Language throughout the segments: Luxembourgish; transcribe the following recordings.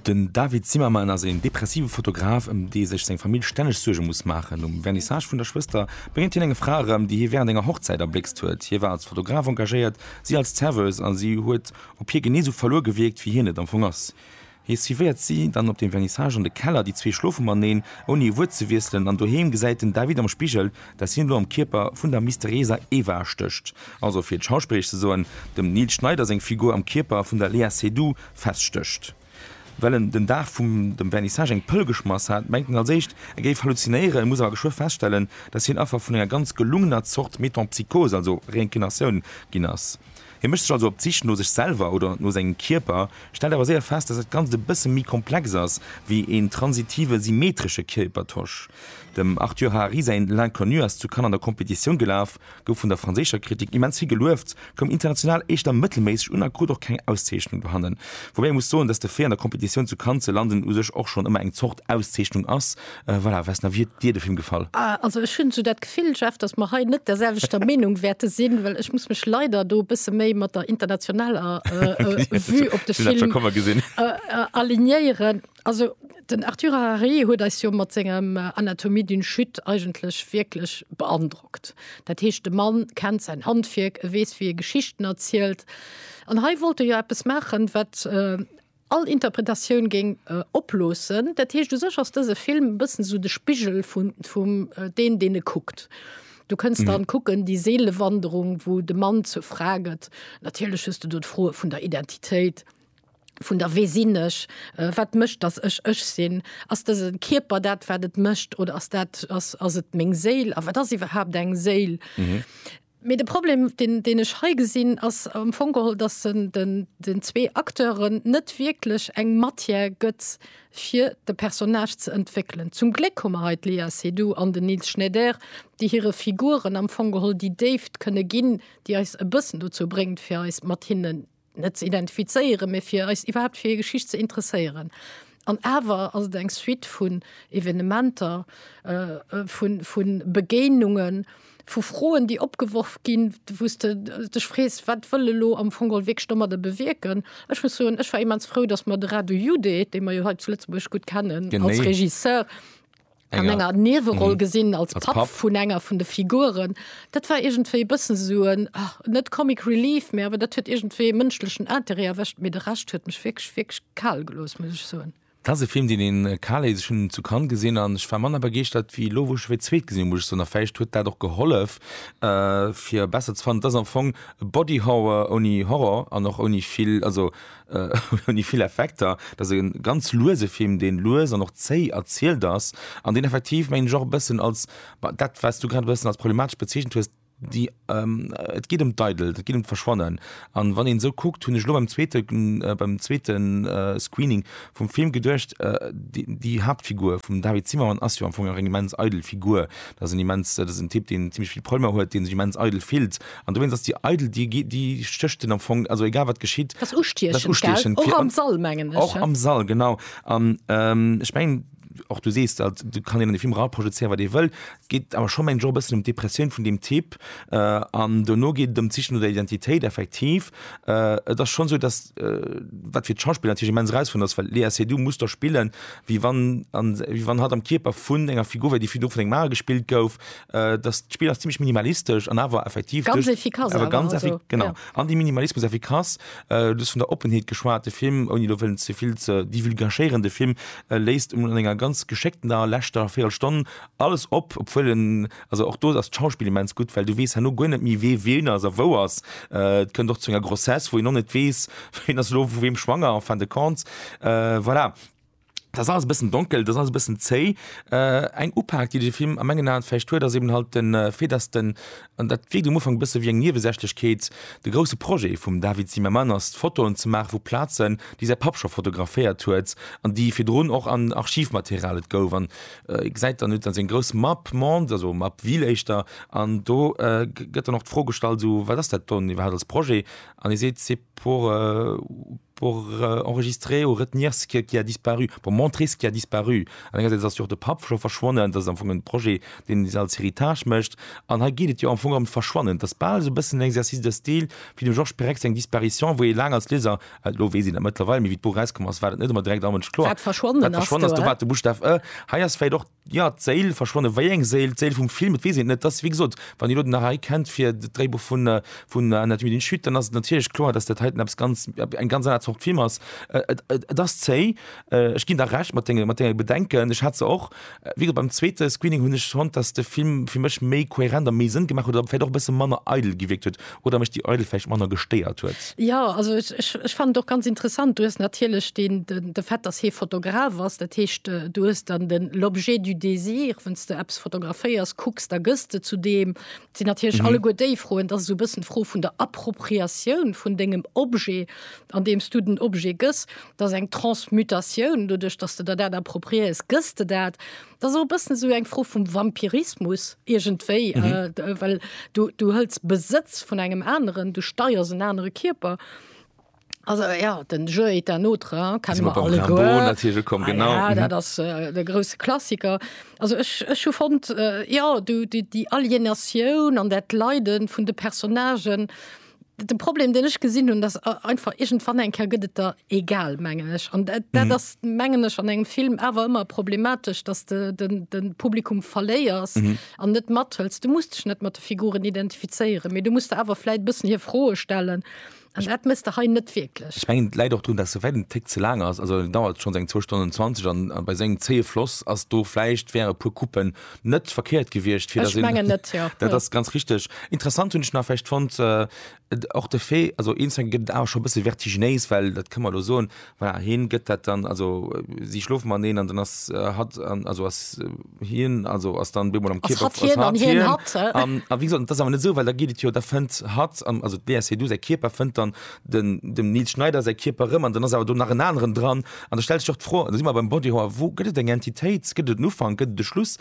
Den David Zimmerman ass een depressive Fotograf, ëm dee sech seng Famill stänneg Suerge muss maachen. Um Vernissage vun der Schwëster begéint hien enger Fra erëm, déi hie wärend enger Hochzäit erbléckst huet. Hie war als Fotograf engagéiert, si als Zerweuse a si huet op hie genee sou verluer gewierkt, wéi hien et am Fong ass. Hie suivéiert si dann op dem Vernissage an de Keller, déi zwee schlofe maneen, ouni e Wuert ze wiesselen, an doheem gesäit den David am Spigel, dass hien elo am Kierper vun der mysterieser Eva stécht, also fir et schauspilleresch ze soen, dem Nils Schneider seng Figur am Kierper vun der Léa Seydoux feststécht. Well en den Dag vum dem Vernissage eng Pëll geschmass hat, mengt en als éischt, e géif halluzinéieren, muss awer geschwë feststellen, dass hien Affer vun enger ganz gelungener Zort Metempsychose, also Reincarnatioun, ginn ass. Hie mécht sech also op d'Sich no sech selwer oder no sengem Kierper, stellt awer séier fest, dass dat Ganzt e bësse méi komplex ass wéi een transitive symmetresche Kierpertosch. Dem Arthur Harari säin L'Inconnu ass zu Cannes an der Competitioun gelaf, gouf vun der franséischer Kritik immens vill gelueft, koum international éischter mëttelméisseg un a krut och keng Auszeechnung dohannen. Woubäi ee muss soen, dass de Fait an der Competitioun zu Cannes ze landen u sech och schonn ëmmer eng Zort Auszeechnung ass, Äh, voilà, was na wie dir de Film gefall? Ah, also ech hunn so dat Gefill Jeff, dass mer hei net der selwechter Meenung wäerte sinn, well ech muss mech leider do bësse méi mat der internationaler äh, äh, Vue op de Film äh, äh, alignéieren. Also den Arthur Harari huet eis jo mat sengem äh, Anatomie d'une Chute eigentlech wierklech beandrockt. Dat heescht de Mann kennt sein Handwierk, e weess wie e Geschichten erzielt. An hei wollt e jo eppes machen, wat äh, all Interpretatioun géing oploossen. Dat heescht, u sech ass dëse Film e bëssen esou de Spigel vun, vum deen, deen e kuckt. Du kënns dann kucken, déi Seelewanderung, wou de Mann zur Fra gëtt. Natierlech hues de do d'Froe vun der Identitéit, vun der Wee sinn ech, wat mécht, datt ech ech sinn? Ass dëse Kierper dat, wat et mécht, oder ass dat, ass, ass et meng Séil? A wat ass iwwerhaapt eng Séil? Mee de Problem, deen, deen ech hei gesinn, ass am Fong geholl, dass en den zwee Acteuren net wierklech eng Matière gëtt, fir de Personnage ze entwéckelen. Zum Gléck hu mer hei d'Léa Seydoux an den Nils Schneider, déi hire Figuren am Fong geholl déi Déift kënne ginn, déi eis e bëssen dozou bréngt, fir eis mat hinnen net ze identifizéieren, mee fir eis iwwerhaapt fir hir Geschicht ze interesséieren. An awer ass et eng Suite vun Evenementer, vu Begéinungen, vu Froen, déi opgeworf ginn, wou s de dech frees, Wat wëll elo am Fong geholl wierklech domadder bewierken? Ech muss soen, ech war immens frou, datt mer de Radu Jude, dee mer jo hei zu Lëtzebuerg gutt kennen als Regisseur, an enger Nieweroll gesinn als Papp vun enger vun de Figuren. Dat war iergendwéi e bëssen esou en, net Comic Relief, mä awer dat huet iergendwéi e mënschlechen Interêt erwëscht. Mee de Rescht huet mech wierklech, wierklech kal gelooss, muss ech soen. Dat ass e Film, deen een kal léisst. Ech hunn en zu Cannes gesinn an ech war manner begeeschtert ewéi elo, wou ech e fir d'zweet gesinn hunn, muss ech soen. A vläicht huet dat och gehollef, fir e besser ze fannen. Et ass am Fong e Body Horror ouni Horror an och ouni vill, also Hun déi vill Effekter, dat ass en ganz luese Film deen lues an och zéi erzielt ass an deen effektiv mengen ech och e bëssen als dat wat s du grad e bëssen als problematesch bezeechent hues, déi et geet ëm d'Eidelt, et geet ëm d'Verschwannen an wann een esou kuckt hunn ech elo beim zweete beim zweete Screening vum Film geduecht déi Haaptfigur vum David Zimmermann ass jo am Fong nach eng immens eidel Figur, dat ass en immens dat ass en Typ deen zimlech vill Problemer huet, dee sech immens eidel fillt. An dowéinst ass déi eidel, déi gi, déi stécht en am Fong, also egal wat geschitt, Dat ass ustiechend, dat ass ustiechend, gell? Och am Sall, mengen ech. Och am Sall, genau. An ähm, ech mengen, och du sees dat, do kann een an de Film eraprojezéieren, wat ee wëll. Et geet awer scho, mengen ech, och e bëssen ëm d'Depressioun vun deem Typ. Äh, an dono geet et ëm d'Siche no der Identitéit, effektiv. Äh, et ass schonn esou, dass, äh, wat fir d'Schauspiller natierlech immens erausfuerdernd ass, well d'Léa Seydoux muss do spillen, wéi wann, wéi wann hatt am Kierper vun enger Figur wär, déi virdru vun engem anere gespillt gouf, Äh, das Spiel ist ziemlich minimalistisch an aber effektiv ganz durch, efficace, aber ganz also, effik genau ja. an die Minimalismus efficace äh, das von der Offenheit geschwarte Film und du willst zu viel zu die vulgascherende Film äh, lässt um länger ganz geschickten da letzter vier Stunden alles ob obwohl den, also auch du das Schauspiel immens gut weil du west nur gar nicht mehr weh wen also wo was äh, können doch zu einer Grossesse wo ich noch nicht weiß wen das lo wem schwanger fand kannst äh, voilà Dat ass alles e bëssen donkel, dat ass alles e bëssen zéi. Eng Upak, déi de Film a mengen Aen vläicht huet, ass eben halt de Fait, dass den, an dat wierkt um Ufank e bësse wéi eng Niewesächlechkeet, de grousse Projet vum David Zimmerman ass, Fotoen ze maache vu Plazen, déi säi Papp scho fotograféiert huet an déi virdrun och an Archivmaterial. Et gouf an e gesäit dann, huet dann seng grouss Map monde, also Map ville éischter, an do gëtt dann och d'Fro gestallt, esou, wat ass dat dann iwwerhaapt als Projet? An hie seet, pour pour enregistrer ou retenir ce qui, qui a disparu, pour montrer ce qui a disparu. An engersäits ass jo och de Papp scho verschwonnen, dat ass am Fong en Projet, deen se als Héritage mécht. An hei geet et jo am Fong ëm d'Verschwannen. Et ass bal esou e bëssen en Exercice de style wéi dem Georges Perec seng Disparition, wou ee laang als Lieser, elo weess een dat mëttlerweil, mee wéi d'Buch erauskomm ass, war dat net ëmmer direkt all Mënsch kloer, Wat verschwonnen ass, do war. wat de Buschtaf e. Hei ass vläicht och Jo, d'Séil verschwonne. Wéi eng Séil? D'Séil vum Film? Et weess een et net. Et ass, wéi gesot, wann Dir elo den Narai kennt fir d'Dréibuch vun vun La nuit d'une chute, dann ass et natierlech kloer, datt dat hei dann eppes ganz, eng ganz aner Zort Film ass. Et ass zéi, ech ginn der Recht mat denge, mat denge Bedenken. Ech hat se och. Wéi gesot, beim zweete Screening hunn ech fonnt, datt de Film fir mech méi kohärent a méi Sënn gemaach huet oder vläicht och e bësse manner eidel gewierkt huet. oder mech déi Eidel vläicht manner gestéiert huet. Jo, also ech, ech, ech fannen et och ganz interessant. Du hues natierlech den, den, de Fait, dass hee Fotograf ass, dat heescht, äh, du hues dann den l'objet du désir, wann s de eppes fotograféiers, kucks, da gëss de zu deem. Et sinn natierlech Mhm. alleguer déi Froen, dass esou e bëssen d'Fro vun der Appropriatioun vun dengem Objet, andeem s du den Objet gëss, dass eng Transmutatioun, doduerch dass de der dat appropriéiers, gëss de dat. Dat ass och e bëssen esou eng Fro vum Vampirismus iergendwéi, well du, du hëls Besëtz vun engem aneren, du steiers en anere Kierper. Also ja, den Jeu est un autre, hein, Da si kennen mer mer beim Rimbaud alleguer. natierlech ukomm, Ah genau. ja, dat ass äh, de grousse Klassiker. Also ech, ech hu fonnt, äh, jo, du, déi, déi Alienatioun an dat Leide vun de Personnagen, De Problem den ech gesinn hunn, dass einfach egent wann eng Ker gëtt et der egal mengen ech. An dat mm. ass mengen ech an engem Film awer ëmmer problematesch, dass de den, den Publikum verléiers an mm. net mathëls. Du musst dech net mat de Figuren identifizéieren, méi du musst awer fläit bëssen hir Froe stellen. Also, dat misst der hei net wirklich. Ich mengen Leiit och dun, dat se werden Tick ze lang ass, also dauert schon seg 2 Stunden 20 an, an bei seng zee Floss ass do fleicht wäre pu Kuppen net verkehrt gewiescht fir ech mengen net ja dat ass ganz richtig interessant hunn ech nach vielleicht fand äh, och de Fee also instant gëtt awer schon bësse vertiginéis well dat këmmer lo soen war heen gëtt dat dann also äh, si schlof man neen an dann ass äh, hat an also ass äh, hien also ass dann bemol am Kipp hat hien an hien hat an a wie gesagt, das awer net so well da giet et jo der fënnt hat an also DSC du se Kierper fënnt dann den dem Nils Schneider se Kierper rëm an dann ass awer du nach en anderen dran An da stellt sech och d'Fro, da si mer beim Body Horror, wou gëtt et eng Entitéit, gëtt et en Ufank, gëtt et e Schluss,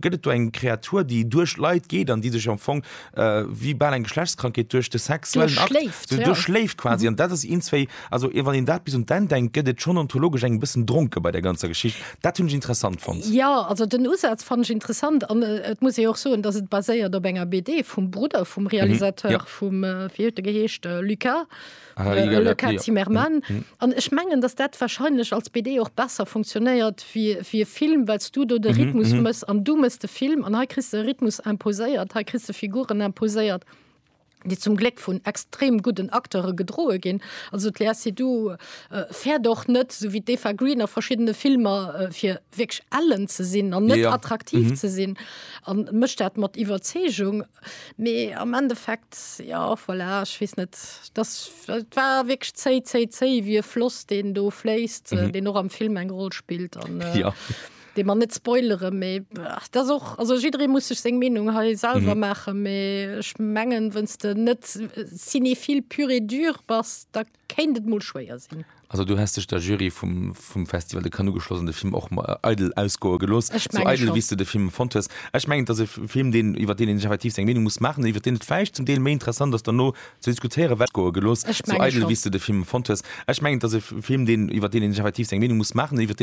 gëtt et do eng Kreatur, déi duerch Leit geet an déi sech am Fong wéi bal eng Geschlechtskrankheet duerch de sexuellen Akt duerchschléift quasi? An dat ass eens wéi, also wann een dat bis un d'Enn denkt, gëtt et schonn ontologesch eng bëssen dronke bei där ganzer Geschicht. Dat hunn ech interessant fonnt. Jo, also den Usaz fannen ech interessant an et muss ee jo och soen, datt et baséiert op enger BD vum Brudder vum Realisateur vum, wéi huet e geheescht, Lucas? Le Cas Timmerman. An ech mengen, datt dat wahrscheinlech als BD och besser funktionéiert wéi e Film, well s du do de Rhythmus mëss an du mëss de Film. An hei kriss de e Rhythmus imposéiert, hei kriss de Figuren imposéiert, déi zum Gléck vun extrem gudden Acteure gedroe ginn. Also d'Léa Seydoux fäert och net, esou wéi d'Eva Green a verschiddene Filmer, fir wierklech ellen ze sinn an net attraktiv ze sinn, a mécht dat mat Iwwerzeegung. Mee am Endeffekt, jo, voilà, ech weess net, dass, et war wierklech zéi, zéi, zéi wéi e Floss, deen do fléisst, mhm. deen och am Film eng Roll spillt. An, äh, ja. De man net spoilere méi dat och also jiddere muss sech seng Menung ha selber mhm. mache méi ech mengen wënns de net äh, sinni vill pure dur bass da kéint et mol schwéier sinn. Also du häss dech der Jury vum, vum Festival de Cannes ugeschloss an de Film och äh, eidel ausgoe gelooss, Ech sou menge eidel schon. wéi s du de Film fonnt hues. Ech mengen, et ass e Film, deen, iwwer deen een sech effektiv seng Meenung muss maachen, iwwer deen et vläicht zum Deel méi interessant ass derno ze diskutéieren, well goe gelooss, Ech sou menge eidel schon. wéi s du de Film fonnt hues. Ech mengen, et ass e Film, deen, iwwer deen een sech effektiv seng Meenung muss maachen, iwwer deen.